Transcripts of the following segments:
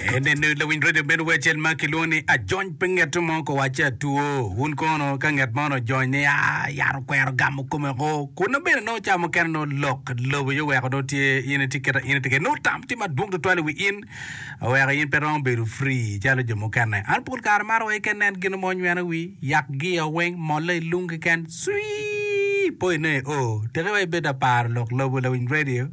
Enenu lawiny redio meno wai acel ma kilwongo ni Ajony pe ngeto mo ka wacce atwo. Wun kono ka nget man ojony ni a yat okwero gamo kome ko. Kunna bene nongo ca mukene nongo lok lobo aye oweko nongo tye in itye keta in itye kede nongo tam tye madwong tutwal i wi in oweko in pe romo bedo free calo jo mukene. An pol kare maro wai ka nen gin mo onyweno wi yak giya weng molla i lung keken. Swii! Po ine o. Teke wai bed aparo lok lobo lawiny redio.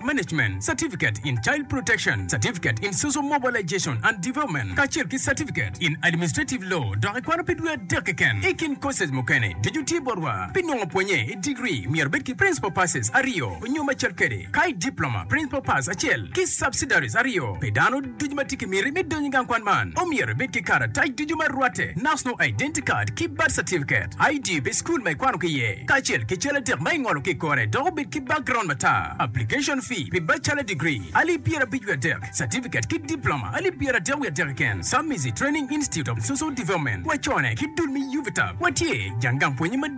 Management Certificate in Child Protection, Certificate in Social Mobilization and Development, kacel ki Certificate in Administrative Law dok ikwano pi dwe adek keken. I kin courses mukene, ducu tye botwa. Pi nongo pwonye i degree, myero ibed ki Principal Passes aryo nyo macel kwede, ka i Diploma, Principal Pass acel ki Subsidiaries aryo pi dano. Ducu ma tye ki miti me donyo i gang kwan man omyero ibed ki karatac ducu ma rwatte, National Identity Card ki Birth Certificate, ID pi cukul ma ikwano ki iye, kacel ki cal adek ma ingolo ki i kore dok obed ki background matar. Application fee pi Bachelor Degree, alip pyera abic wiye adek, Certificate ki Diploma, alip pyera adek wiye adek keken, Samizi Training Institute of Social Development, wacone ki dul me UVTAB, watye jang gang pwonye madit.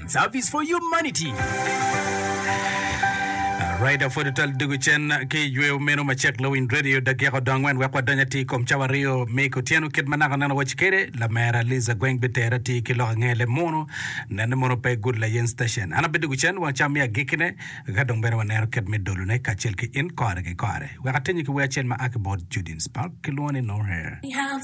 Service for Humanity. Rider for Total dugu cen ki yweo meno macek Lowind Radio dakika odong angwen wek wadony atir kom cawa aryo me kotyeno kit ma naka neno waci kede lamera Liza Gweng biter atir ki lok ange le mono nene mono pe good layen station an abedo dugu cen wang cam mi agikine ka dong bene wanero kit me dolone kacel ki in kore ki kore wek atenyi ki wer acel ma aki bot Judin Spark kilwongo ni No Hair.